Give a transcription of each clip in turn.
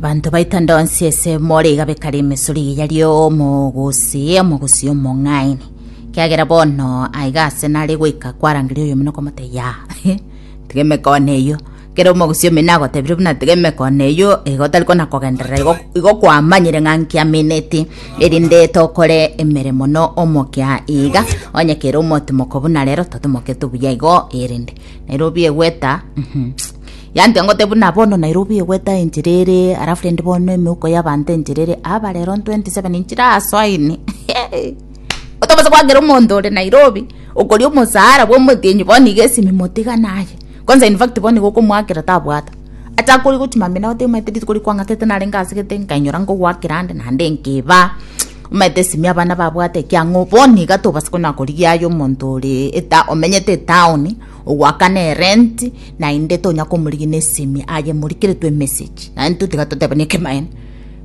banto baita ndonsi ese more igabe kare emesori eye yari omogosi omogosi omong'aini kiagera bono aiga ase nare goika kwarangeria oyomino okomote ya tiga emekone eyio kera omogosi omino agotebire buna tiga emekone eyio iga otari kona kogenderera igo igo kwamanyire ng'a nkiamineti erinde tokore emeremo na omokia iga onye kere omotimoko buna rero totimokete buya igo erinde nairobi egweta Yante ngote buna bono Nairobi egweta enchera ere alafu rende bono emeuko y'abanto enchera ere aba rero 27 inchera asoine otobasa kwagera omonto ore Nairobi okoria omosara bwa omotienyi bono iga esimi motigana aye kwanza in fact bono iga okomoakera tabwata ata akori gochi mamina ote omanyete rituko riku kwang'atete narenge asegete nkainyora nkogoakera ande naende nkiba omanyete esimi abana babwate ekiang'o bono iga tobasa konya korigia aye omonto ore eta omenyete etaoni Ogoakana erenti, naende tonya komorigia nesemi aye morikeretwe emessage, naende totiga totebane ekemanyereria.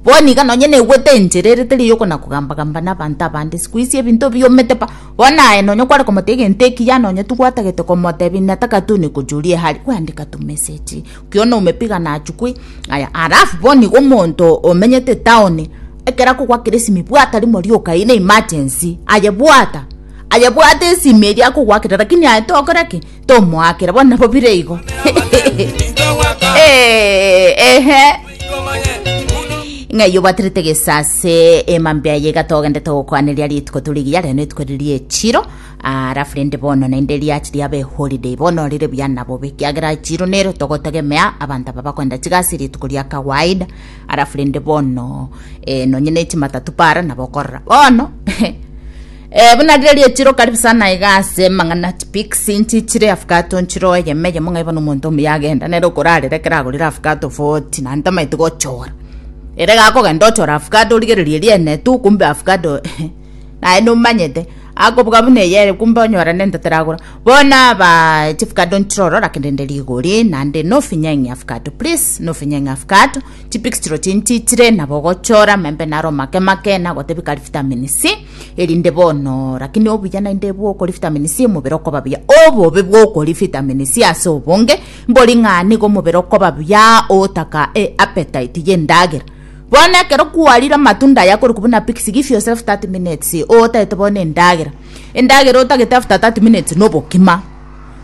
Bono iga nonye naigwete enchera ere teri yokona kogamba gamba nabanto abande sikuisi ebinto biomete pa, bono aye nonye kware komotebia egento ekiya nonye tigwatagete komotebia nataka tune kochuria ehari gwandika tu message kio noume piga nachukue aya alafu bono igo omonto omenyete town ekero akogoakera esimi bwata rimo rioka eye ne emergency aye bwata. Aye bwate esimi eria akogwakera lakini aye tokora ki tomoakera bono nabo bire igo Eh, ehe ng'a iyo bwaterete gesase emambe aye iga togendete gokwaneria rituko turi giya reno rituko riri echiro arafu rende bono naende riachi riaba eholiday bono rire buya na bobe kiagera echiro nero togotegemea abanto aba bakoenda chigasi rituko ria kawaida arafu rende bono eh, nonye ne chimatatu para nabo okorora bono Ee, buna rire rietire okaribu sana iga ase mang'ana tipics inchi chire afkato nchire oyeme yemo ng'aiba nomonto omuya agenda nere okorarera ekero agorire afkato 40 na ntamaete gochora ere gakogenda ochora afkato origererie riene tu kumbe afkato naye nomanyete akobuga buna eyere kumbe onyora nento taragora bono aba chifkato nchire orora kende nde rigori nande nofinye ng'e afkato please nofinye ng'e afkato chipics chiro chinchi chire nabo ogochora membe naro make make nagotebi kari vitamin C Erinde bono rakini obuya naende bwokori vitamini C omobere okoba buya. Obobe bwokori vitamini C ase obonge mbori ng'a nigo omobere okoba buya otaka e appetite y'endagera. Bono ekero kwarire amatunda aya akorokwa buna pixi give yourself 30 minutes otagete bono endagera. Endagera otagete after 30 minutes na obokima.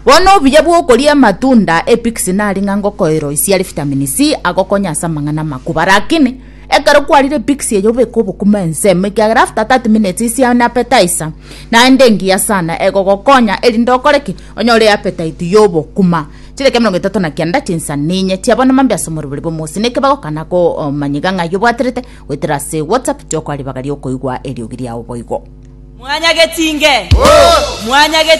Bono obuya bwokoria amatunda e pixi nari ng'a ngokoeroisia are vitamini C agokonye ase amang'ana amakubaa rakini. Ekero kwarire pixie eyo beka obokima ensemo ekiagera after 30 minutes isia an appetizer naende engiya sana egogokonya erinde okore ki? Onyore appetite ya obokuma. Chidakika emerongo etato na kenda chinsa ninye chia bono mambia ase omoribori bwa omosi niki bagokana ko omanye iga ng'ai obwaterete goetera ase WhatsApp tiokoa ribaga riokoigwa eriogi riao boigo. Mwanyageti inge! Mwanyageti inge!